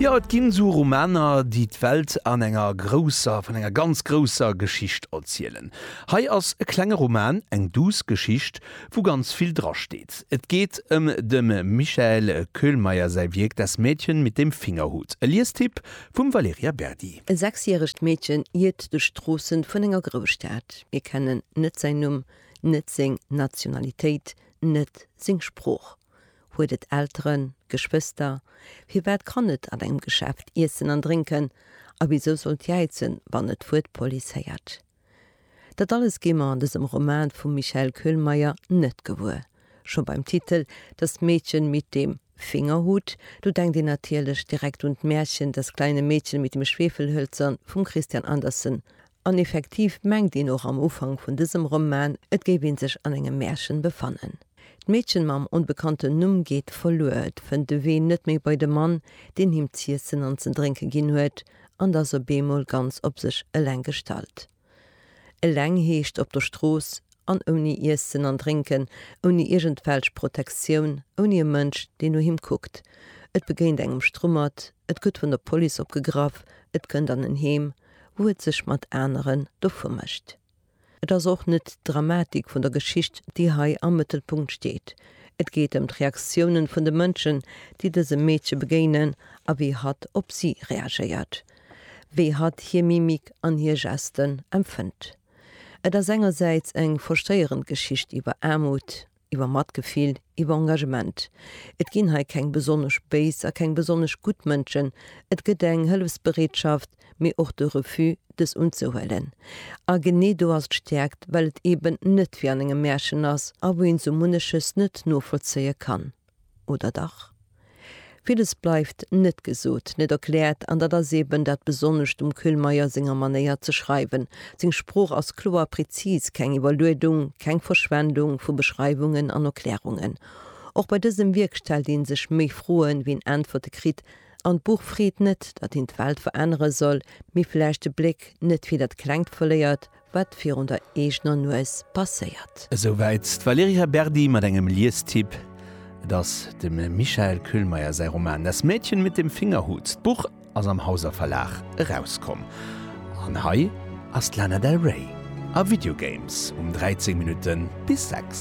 Jo, et ginn esou Romaner, déi d'Welt an enger grousser, vun enger ganz grousser Geschicht erzielen. Hei ass e klenge Roman, eng duuss Geschicht, wou ganz vill drasteet. Et geet ëm dem Michael Köhlmeier säi Wierk Das Mädchen mit dem Fingerhut, e Liestipp vum Valerija Berdi. E sechsjäregt Meedchen iert duerch d'Stroossen vun enger Grousstad. Mir kennen net säin Numm, net seng Nationalitéit, net seng Sprooch. Huet et Elteren, Geschwëster? Firwat kann et an engem Geschäft iessen an drénken a wisou sollt jäizen, wann et d'Wuert Police héiert? Dat alles gi mer an dësem Roman vum Michael Köhlmeier net gewuer. Scho beim Titel Das Mädchen mit dem Fingerhut, do denkt een natierlech direkt un d'Märchen Das kleine Mädchen mit dem Schwefelhölzern vum Christian Andersen An effektiv mengt een och am Ufank vun dësem Roman, et géif een sech an engem Märchen befannen. D'Meedchen mam onbekannten Numm geet verluer, et fënnt de Wee net méi bei de Mann, deen him z'iessen an ze drénke ginn huet, an t'ass op eemol ganz op sech eleng gestallt. Eleng heescht op der Strooss an ouni Iessen an Drénken, ouni iergendwelch Protektioun, ouni e Mënsch, deen no him kuckt. Et begéint engem Strummert, Et gëtt vun der Police opgegraff, et kënnt an en Heem, wou et sech mat aneren dovu mécht. Et ass och net d'Dramatik vun der Geschicht, déi hei am Mëttelpunkt steet. Et geet ëm d'Reaktiounen vun de Mënschen, déi dësem Meedche begéinen a wéi hatt op si reagéiert, wéi hatt hir Mimik an hir Gesten empfënnt. Et ass engersäits eng verstéierend Geschicht iwwer Aarmut, iwwer Matgefill, iwwer Engagement. Et ginn hei keng besonnesch béis a keng besonnesch gutt Mënschen, et gëtt eng Hëllefsbereetschaft, mee och de Refus, dës unzehuelen. A genee do ass d'Stäerkt, well et eben net wéi an engem Märchen ass a wou een sou munneches net novollzéie kann. Oder dach? Villes bleift net gesot, net erkläert, an dat ass eben dat Besonnescht um Kühlmeier senger Manéier ze schreiwen. Seng Sprooch ass kloer, prezis, keng Iwwerluedung, keng Verschwendung vu Beschreiwungen an Erklärungen. Och bei dësem Wierk stellt ee sech méi Froen, wéi en Äntwerte kritt, an d'Buch freet net, dat een d'Welt verännere soll, mee vläicht de Bléck net fir dat Klengt verléiert, Wat virun der eegener Nues passéiert. Esou wäit d'Valerija Berdi mat engem Liestipp, Et ass dem Michael Köhlmeier säi Roman Das Mädchen mit dem Fingerhut. D'Buch ass am Hauser Verlag erauskomm. An hei ass d'Lana Del Rey a Video Games um 13 Minutte bis 6.